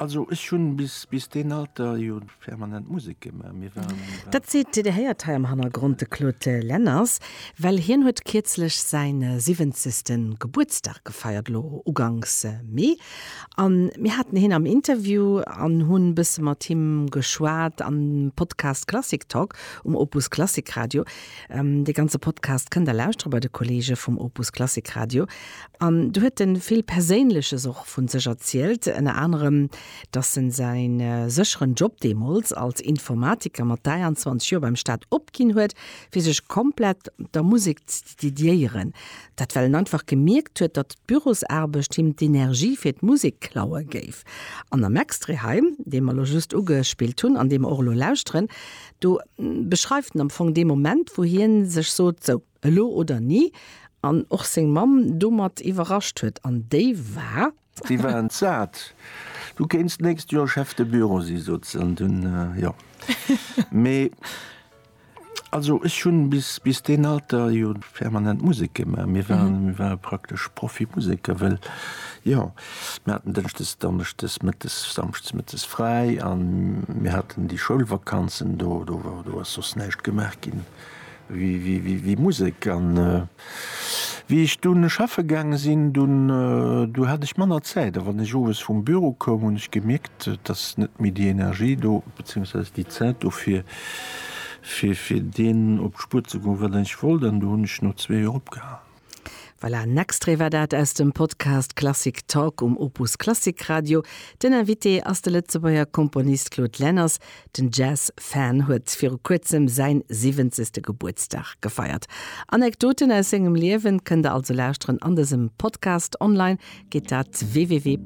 Also ech hunn bis deen Alter jo permanent Musek gemaach. Mir waren. Dat seet, Dir héiert hei am Hannergrond, de Claude Lenners, well hien huet kierzlech säi siwwenzegste Gebuertsdag gefeiert, elo uganks Mee. A mir haten hien am Interview an hunn e bësse mat him geschwat am Podcast Klassik Talk um Opus Klassik Radio. Dee ganze Podcast kënnt Der lauschteren bei de Kollege vum Opus Klassik Radio. An do huet en vill Perséinleches och vun sech erzielt, ënner anerem dass en säin sécheren Job deemools als Informatiker mat 23 Joer beim Staat opginn huet fir sech komplett der Musek ze dediéieren. Dat well en einfach gemierkt huet datt d'Bürosarbecht him d'Energie fir d'Musek klaue géif. An am Extrait hei dee mer elo just ugespillt hunn an dee mer och elo lauschteren, do beschreift en am Fong dee Moment wou hien sech sot, sou, Elo oder ni, an och seng Mamm domat iwwerrascht huet, an déi war. Déi war entsat. Du kéins d'nächst Joer Chef de Bureau si, sot se, an dunn, jo. Mee also ech hunn bis deen Alter jo permanent Musek gemaach. Mir waren, mir ware praktesch Profimuseker, well jo, mir haten dënschdes, donneschdes, mëttes, samschdes mëttes fräi a mir haten déi Schoulvakanzen, do ass soss näischt gemaach ginn. Wéi Musek. An wéi ech dunn schaffe gaange sinn, dunn du hat ech manner Zäit. A wann ech owes vum Büro koum, hunn ech gemierkt, et ass net méi déi Energie do, beziehungsweise déi Zäit do fir fir deenen op d'Spuer ze goen, wat ech wollt. An du hunn ech no zwee Joer opgehalen. Voilà, en Extrait war dat aus dem Podcast Klassik Talk um Opus Klassik Radio. Den Invité ass de Lëtzebuerger Komponist Claude Lenners. Den Jazz Fan huet viru kuerzem säin siwwenzegste Gebuertsdag gefeiert. Anekdoten aus sengem Liewen kënnt der also lauschteren an dësem Podcast. Online geet dat www.opus.radio.